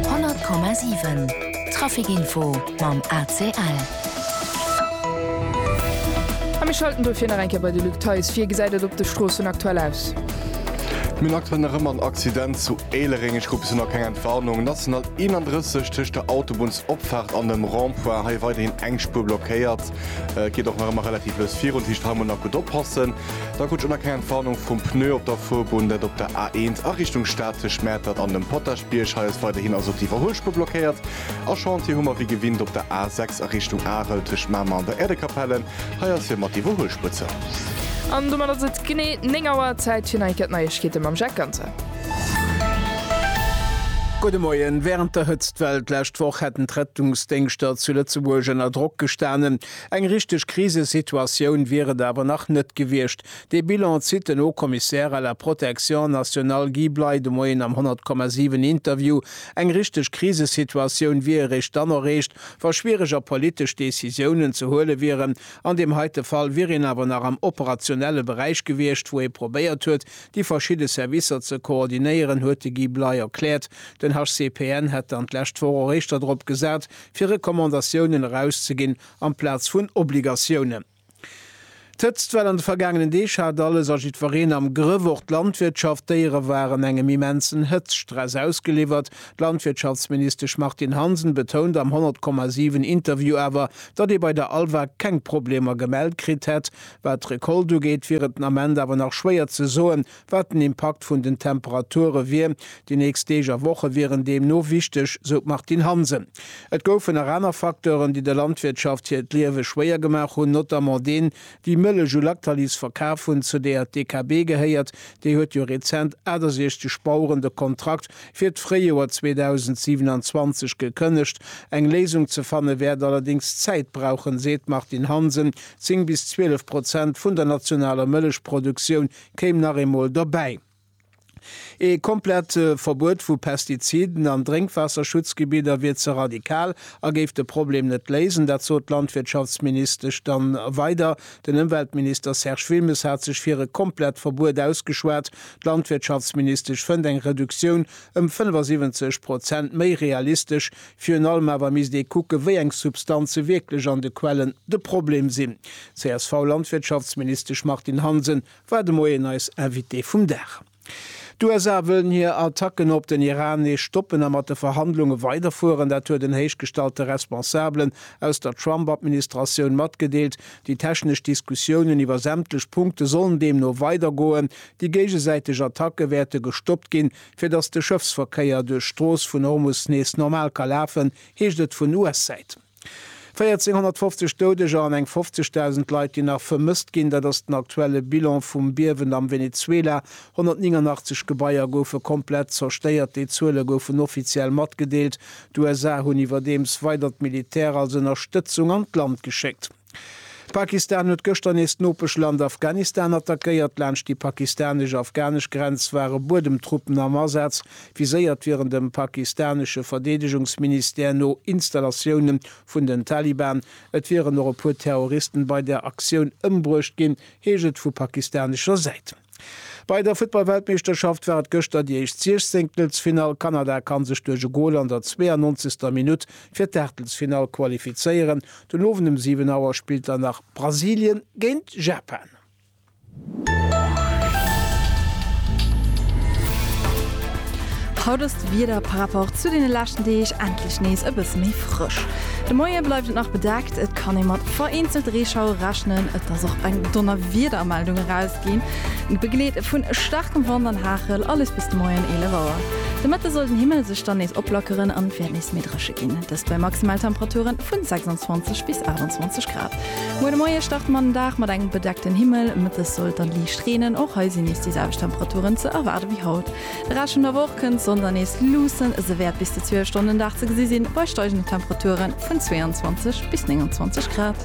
100,7 Trafic-Info mam ACL. A mir schalten dofir nach eng Kéier bei de Luc Theis. Wéi gesäit et op de Stroossen aktuell aus? Mir hunn aktuell nach ëmmer en Accident zu Éilereng. Ech krut bis elo nach keng Entwarnung. National 31 tëscht der Autobunnsopfaart an dem Rond-point, hei weiderhin eng Spuer blockéiert. Et geet och nach ëmmer relativ lues virun, dat heescht hei mol nach gutt oppassen. Da krut ech och nach keng Entwarnung vum Pneu op der Fuerbunn, dat op der A1 a Richtung Stad tëscht Mäertert an dem Potaschbierg. Hei ass weiderhin also och déi Iwwerhuelspuer blockéiert. A Chantier hu mer wéi gewinnt op der A6 a Richtung Arel tëscht Mamer an der Äerdekapelle. Hei ass fir mat d'Iwwerhuelspuer zou. An domat ass et genee 9 Auer, Zäit fir nei Cat Neiegkeete mam Jacques Ganter. Gudde Moien. Wärend der Hëtztwell d'lescht Woch hätten d'Rettungsdéngschter zu Lëtzebuerg ënner Drock gestanen. Eng richteg Krisesituatioun wier et awer nach net gewiescht. Dee Bilan zitt den Haut-Commissaire à la protection nationale Guy Bley de Moien am 100,7 Interview. Eng richteg Krisesituatioun wier eréischt dann erreecht, wa schwiereg a politesch Decisiounen ze huele wieren. An deem heite Fall wier een awer nach am operationelle Beräich gewiescht, wou ee probéiert huet, Déi verschidde Servicer ze koordinéieren, huet de Guy Bley erkläert. Den HCPN hätt dann d'lescht Woch och éischter drop gesat, fir Recommandatiounen erauszeginn amplaz vun Obligatiounen. D'Hëtztwell an de vergaangenen Deeg hat alles a jiddwereen am Grëff. Och d'Landwirtschaft. D'Déiere waren engem immensen Hëtztstress ausgeliwwert. D'Landwirtschaftsministesch Martine Hansen betount am 100,7 Interview awer, datt ee bei der ALVA keng Problemer gemellt kritt hätt. Wat d'Recolte ugeet, wier et den Ament awer nach schwéier ze soen, wat den Impakt vun den Temperature wier. Déi nächst Deeg a Woche wieren deemno wichteg, sou d'Martine Hansen. Et goufen nach aner Facteuren, déi der Landwirtschaft hiert Liewe schwéier gemaach hunn, notamment deen, déi Mëllech u Lactalis verkaf hunn, zu deeër d'DKB gehéiert. Déi huet jo rezent 68 Baueren de Kontrakt fir d'Fréijoer 2027 gekënnegt. Eng Léisung ze fanne wäert allerdéngs Zäit brauchen, seet d'Martine Hansen. Zéng bis zwielef Prozent vun der nationaler Mëllechproduktioun kéim nach eemol dobäi. Ee komplett Verbuet vu Pestiziden an Drénkwaasserschutzgebidder wier ze radikal a géif de Problem net léisen. Dat sot d'Landwirtschaftsministesch dann weider. Den Ëmweltminister Serge Wilmes hat sech fir e komplett Verbuet ausgeschwat. D'Landwirtschaftsministesch fënnt eng Reduktioun ëm 75 Prozent méi realistesch Virun allem awer misst ee kucken, wéi eng Substanze wierklech an de Quellen de Problem sinn. D'CSV-Landwirtschaftsministesch Martine Hansen war de Moien eis Invitée vum Dag. D'USA wëllen hir Attacken op den Iran nees stoppen a mat de Verhandlunge weiderfueren. Dat huet en héichgestallte Responsabelen aus der Trump-Administratioun matgedeelt. Déi technesch Diskussiounen iwwer sämtlech Punkte sollen deemno weidergoen. Déi géigesäiteg Attacke wäerte gestoppt ginn, Fir datt de Schëffsverkéier duerch d'Strooss vun Hormus nees normal ka lafen, heescht et vun US-Säit. 1.450 Doudeger an eng 50.000 Leit, déi nach vermësst ginn, dat ass den aktuelle Bilan vum Biewen am Venezuela. 189 Gebaier goufe komplett zerstéiert, déi Zuele goufen offiziell matgedeelt. D'USA hunn iwwerdeems weider d'Militär als Ënnerstëtzung an d'Land geschéckt. Pakistan huet gëschter nees d'Nopeschland Afghanistan attackéiert. Laanscht déi pakistanesch-afghanesch Grenz ware Buedemtruppen am Asaz, viséiert wieren dem pakistanesche Verdeedegungsministère no Installatioune vun den Taliban. Et wieren och e puer Terroristen bei der Aktioun ëmbruecht ginn, heescht et vu pakistanescher Säit. Bei der Futtballweltmeeschterschaft war et gëschter déi éischt Siechzéngtelsfinall. Kanada kann sech duerch e Gol an der 92. Minutt fir d'Aachtelsfinall qualifizéieren. Den Owend um 7 Auer spillt dann nach Brasilien géint Japan. Haut ass d'Wieder par rapport zu deene leschten Deeg endlech nees e bësse méi frësch. De Moie bleift et nach bedeckt. Kann ee mat vereenzelt Reeschauere rechnen? Et ass och eng Donnerwiedermeldung erausginn, begleet vu staarkem Wand an Hagel, alles bis de Moien 11 Auer. De Mëtte soll den Himmel sech dann nees oplackeren an et wäert nees méi dréche ginn, dëst bei Maximaltemperature vu 26 bis 28 Grad. Muer de Moie starte mer den Dag mat engem bedeckten Himmel, Mëttes soll et dann liicht reenen, och hei sinn nees déi selwecht Temperaturen ze erwaarde wéi haut. De Rescht vun der Woch kënnt d'Sonn dann nees luussen, se wäert bis zu 12 Stonnen den Dag ze gesi sinn, bei steigenden Temperature vun 22 bis 29 Grad.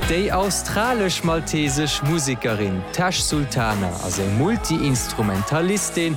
Déi australesch-maltesesch Musekerin Tash Sultana ass eng Multi-Instrumentalistin,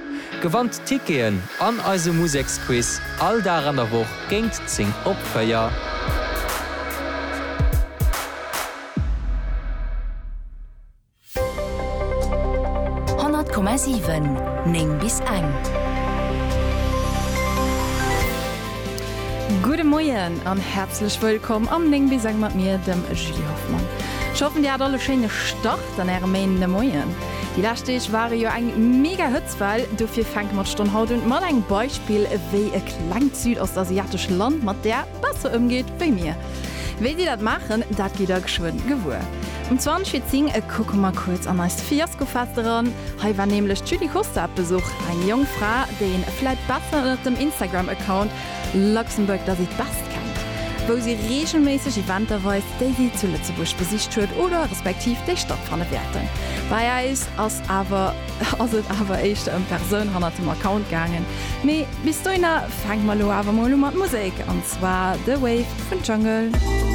Gewannt Ticketen an eise Museksquiz all Dag an der Woch géint 10 op 4. Honnert Komma siwen, Néng bis eng. Gudde Moien an häerzlech wëllkomm am Néng bis eng mat mir, dem Julie Hoffmann. Ech hoffen, dir hat all e schéine Start. Dann äre Main de Moien. Déi lescht Deeg ware jo eng mega Hëtzwell, dofir fänke mer d'Stonn haut un mat engem Beispill, wéi e klengt südostasiatescht Land mat där besser ëmgeet wéi mir. Wéi déi dat maachen, dat gitt der geschwënn gewuer. Um 20 vir 10 kucke mer kuerz an eist Fiaskofest eran. Hei war nämlech d'Julie Costa op Besuch, eng jonk Fra, déi een vläit besser ënnert dem Instagram-Account Luxembourg does it best kennt, wou si reegelméisseg Eventer weist, déi si zu Lëtzebuerg besicht huet oder respektiv déi stattfanne wäerten. Bei äis ass awer ass et awer éischter ëm d'Persoun hannert dem Account gaangen. Mee bis dohinner fänke mer elo awer mol u mat Musek, an zwar The Wave vun Jungle.